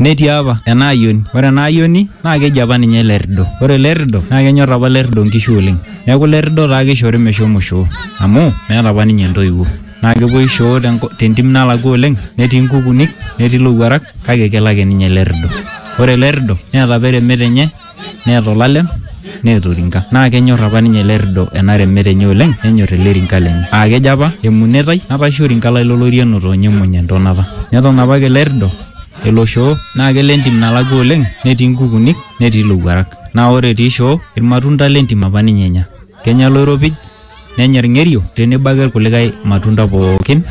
netii apa ena ayioni ore ena ayioni naa keji apa ninye lerrido ore lerrido naa kenyorr apa lerrido inkishu oleng neeku lerrido taa kishori meshomo shoo amu meeta apa ninye intoiwuo naa kepuoi shoo tenko- tentim nalakua oleng netii inkukunik netii ilowuarak kake kelo ake ninye lerrido ore lerrido neeta apa eremete enye neeta olalem neeta orinka naa kenyor apa ninye ele rido ena remet enye oleng nenyor ele rinka lenye aa kejo apa emunetai natasha orinka lai lolorieno toonya emuny entonata neton apake ele rido elo shoo naa kelo entim nalakua oleng netii inkukunik netii ilowuarak naa ore etii shoo irmatunda lentim apa ninye enya kenya iloiropij. nenya ilng'erio tenebo ake ilkulikae matunda pookin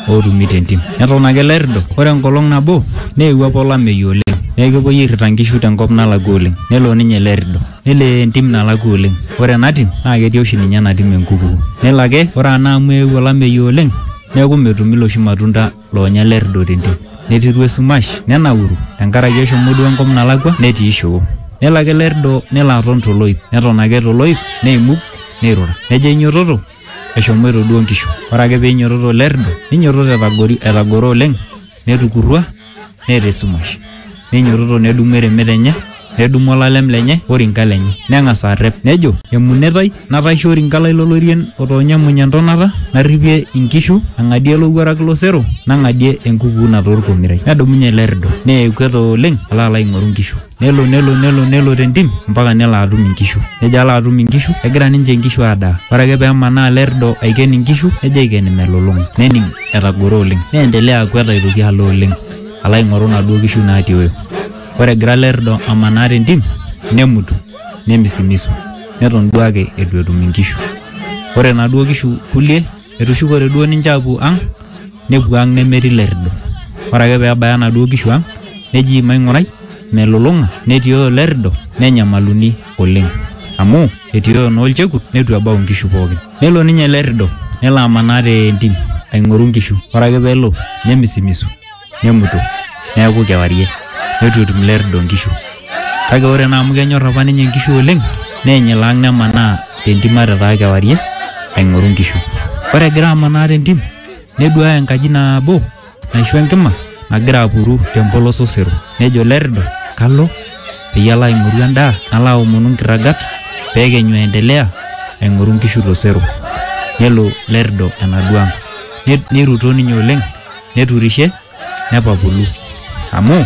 ootumi tentim. Neton ake ilairrido, ore enkolong nabo neewuo apa olameyu oleng neeku kepuoi airrita nkishu tenkop nalakua oleng. Nelo ninye ele rrido nelo entim nalakua oleng. Ore ena tim naa ketii oshi ninye ena tim enkuku. Nelo ake ore naa amu eewuo olameyu oleng neeku metumi iloshi matunda loonya lerrido tente, netiru esumash, nenauru, te nkaraki eshomo duo enkop nalakua, netii shoo. Nelo ake lerrido nelo aton to loip, neton ake to loip, neimug, neirura. Nejo ainyototo, eshomoito duo nkishu. Ore ake pee einyototo lerrido, neinyototo etagoro oleng, netukurrua, neeta esumash. Neinyototo nedumu eremet enye, nedumu olalem lenye o rinka lenye, neng'as arrep, nejo, Emunetai, nataishe orinka lai lo lorien otoonya emuny e ntonata, narripie inkishu, ang'adie olowuaraki lo sero, nang'adie enkukuuna too lkomirai. Nedumunye ele rrido, neya ekuet oleng alo alo aing'oru inkishu. Nelo, nelo, nelo, nelo te ntim ompaka nelo atum inkishu. Nejo alo atum inkishu, egira ninche inkishu aadaa. Ore ake pee emanaa ele rrido aiken inkishu, nejo aiken imelulung'a. Nening etagoro oleng. Neendelea akwet aitoki alo oleng. alo aing'oru naduo kishu naatioyo. Ore egira Lerdo amanaa tentim nemutu nemisimisu neton duake eitu etum inkishu. Ore naduo kishu kulie etushukote duo ninche aapuo ang' nepuo ang' nemetii Lerdo. Ore ake peebaya naduo kishu ang' neji maing'urai melulung'a netioyo Lerdo nenyamaluni. oleng amu etioyo naa olchekut neitu ebau inkishu pookin nelo ninye ele rrido nelo amanaa te ntim aing'oru inkishu ore ake peelo nemisimisu nemutu neeku kewarie neitu etum ele rrido inkishu kake ore naa amu kenyorr apa ninye inkishu oleng neeny ilo ang nemanaa tentim ata etaa kewarie aing'oru inkishu ore egira amanaa tentim neduaya enkaji nabo. naishu enkima nagira apuru tempolos osero nejo lerrido kalo peyie alo aing'oru endaa nalo aomonu nkirragat pekenyu aendelea aing'oru nkishu tosero nelo lerrido enaduo ang Net- neiruto ninye oleng neturishe nepapulu amu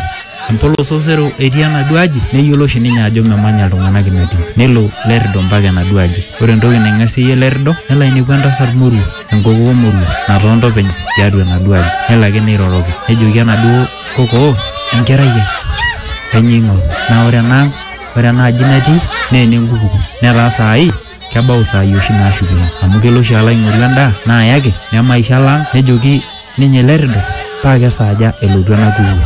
empolos osero etii enaduo aji neyiolo oshi ninye ajo memanya iltung'anak ina tim nelo lerrido mpaka enaduo aji ore entoki naing'asieyie lerrido nelo ainepu entasat moruo enkokoo Moruo natoonto openy tiatua enaduo aji nelo ake neiroroki nejoki enaduo kokoo enkerai ai kainyoo ing'oru naa ore ena ang ore ena aji natii naa enenkuku netaa saai kebau isaai oshi naashukunye amu kelo oshi alo aing'oru endaa naayaki nemaisho alo ang nejoki ninye ele rrido paa kesaaja elotu ena kuku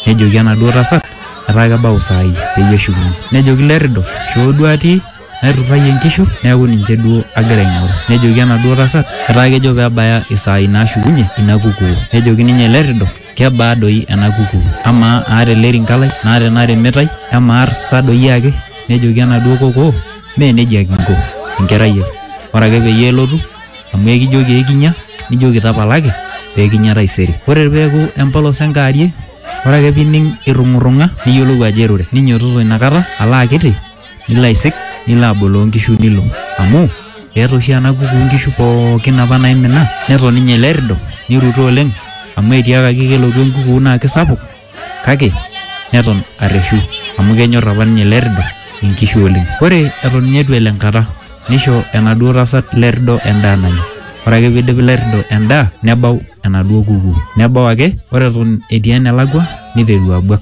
nejoki enaduo tasat etaa kebau isaai peyie eshukunye nejoki ilo errido shoo duo atii. naiturrayie inkishu neeku ninche duo agira aing'oru nejoki enaduo tasat etaa kejo pebaya isaai nashukunye ina kukuu nejoki ninye ele rrido kebaa doi ena kukuu amaa aata ele rinka lai naata ena rimitai emaa sa doi ake nejoki enaduo kokoo mee nejia kinko enkerai ai ore ake peyie elotu amu ekijoki ekinya nijoki tapalaki pekinya taisere ore peeku empolos enkaarie ore ake pining irrung'urrung'a niyiolou ajo irure ninyototo inakata alo akiti. nilo aisik nilo aboloo nkishu nilo amu eeta oshi ena kuku nkishu pookin apa naimina neton ninye ele rido niruto oleng amu etiakaki kelotu enkuku naa kisapuk kake neton arreshu amu kenyorr apa ninye ele rido inkishu oleng ore eton ninye etu elo enkata nisho enaduo tasat ele rido endaa nanya ore ake piidip ele rido endaa nebau enaduo kuku nebau ake ore eton etii enelakua niteru abuak.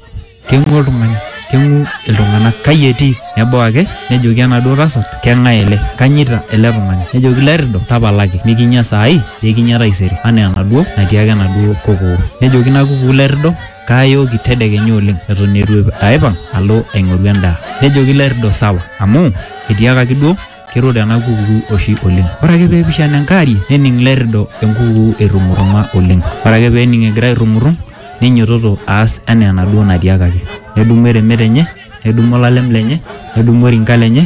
keng'u oltung'ani keng'u iltung'anak kai etii nebau ake nejoki enaduo tasat keng'ae ele kanyita ele tung'ani nejoki lairrido tapalaki mikinya saai pekinya taisere anaa enaduo natiaka enaduo kokoo nejoki ina kukuu lairrido kaayooki tedekenya oleng eton etu aipang alo aing'oru endaa nejoki lairrido sawa amu etiakaki duo Keirura ena kukuu oshi oleng. Ore ake pee eipishana enkaari nening Lerrido enkukuu eirrung'urrung'a oleng. Ore ake pee ening egira airrung'urrung neinyototo aas anaa enaduo natiakaki. Nedumu eremet enye, nedumu olalem lenye, nedumu orinka lenye